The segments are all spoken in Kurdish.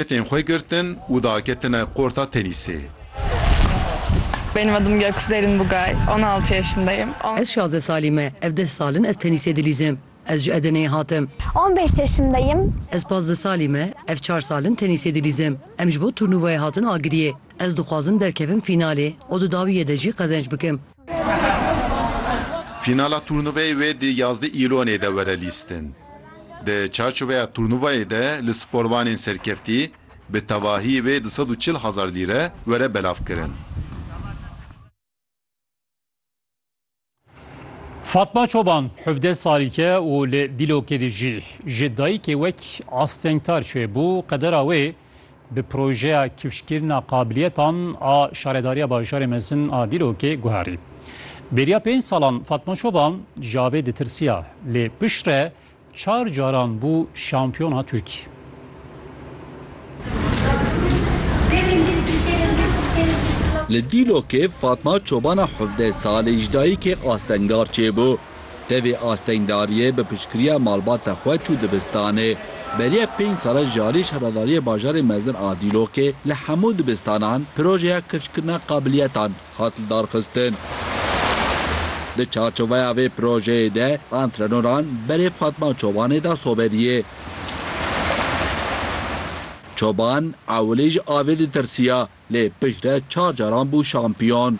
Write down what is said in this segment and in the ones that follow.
Petên xwe girtin û daketine qorta tenîsê. Benim adım Göksu Derin Bugay. On altı yaşındayım. On. Ez şazdeh salî me. Ev deh sal in ez tenîsê dilîzim. Ez ji Edeneyê hatim. On beş yaşındayım. Ez pazdeh salî me. Ev çar sal in tenîsê dilîzim. Em ji bo turnuvayê hatin agiriyê. Ez dixwazim derkevim fînalê û di dawiyê de jî qezenç bikim. Fînala turnuveyê wê di yazdeh Îlonê de were lîstin. Di çarçoveya turnuvayê de li sporvanên serkeftî bi tevahî wê du sed û çil hezar lîre were belavkirin. Fatma Çoban hevdeh salî ke û li Dîlokê dijî. Ji dayikê wek astengtar çêbû, qedera wê bi projeya kifşkirina qabiliyetan a Şaredariya Bajarê Mezin a Dîlokê guherî. Bêriya pênc salan Fatma Çoban ji avê ditirsiya lê piştre çar caran bû şampiyona Tirkiyê. Li Dîlokê Fatma Çobana hevdeh salî ji dayikê astengar çêbû. Tevî astengdariyê bi piştgiriya malbata xwe çû dibistanê. Beriya pênc sale jarî Şaredariyê Bajarê Mezin a Dîlokê li hemû dibistanan projeya kirçkirina qabiliyetan hat lidarxistin. Di çarçoveya vê projeyê de antrenoran berê Fatma Çobanê da soberiyê. Çoban ewilî ji avê ditirsiya. Lê piştre çar caran bû şampiyon.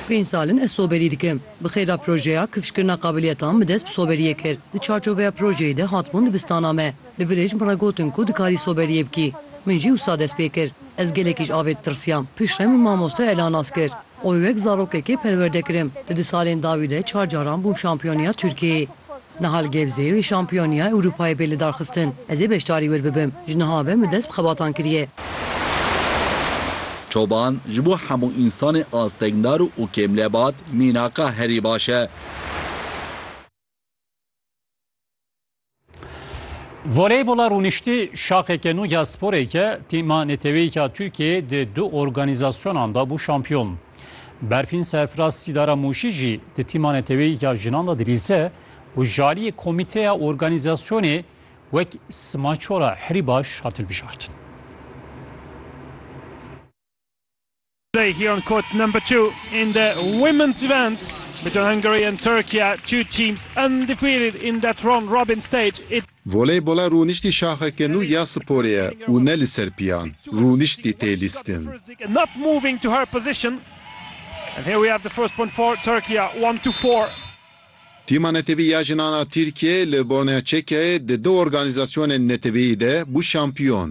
Pênc sal in ez soberî dikim. Bi xêr re projeya kifşkirina qabiliyetan bi dest bi soberiyê kir. Di çarçoveya projeyê de hatibûn dibistana me. Li vir ê ji min re gotin ku dikarî soberiyê bikî. Min jî wisa dest pê kir. Ez gelekî ji avê ditirsiyam. Piştre min mamoste Ela nas kir. Oy wek zarokekê perwerde kirim. Di di salên dawî de çar caran bûm şampiyoniya Tirkiyeyê. Niha li Gebzeyê wê Şampiyoniya Ewropayê bê lidarxistin. Ez ê beşdarî wir bibim. Ji niha ve min dest bi xebatan kiriye. Çoban, ji bo hemû însanê astekdar û kêmlebat mînaka herî baş e. Voleybola rûniştî şaxeke nû ya sporê ke tîma neteweyî ya Tirkiyeyê di du organîzasyonan de bû şampiyon. Berfîn serfiraz Sîdara Mûşî jî di tîma neteweyî ya jinan de dilîze û ji aliyê komîteya organîzasyonê wek Sima Çora herî baş hat hilbijartin. Today here on court number two in the women's event between Hungary and Turkey, two teams undefeated in that round robin stage. It Voleybola rûniştî şaxeke nû ya sporê ye û ne li ser piyan, rûniştî tê lîstin. Tîma netewî ya jinan a Tirkiyeyê li Bornea Çekyayê di du organîzasyonên netewîyî de bû şampiyon.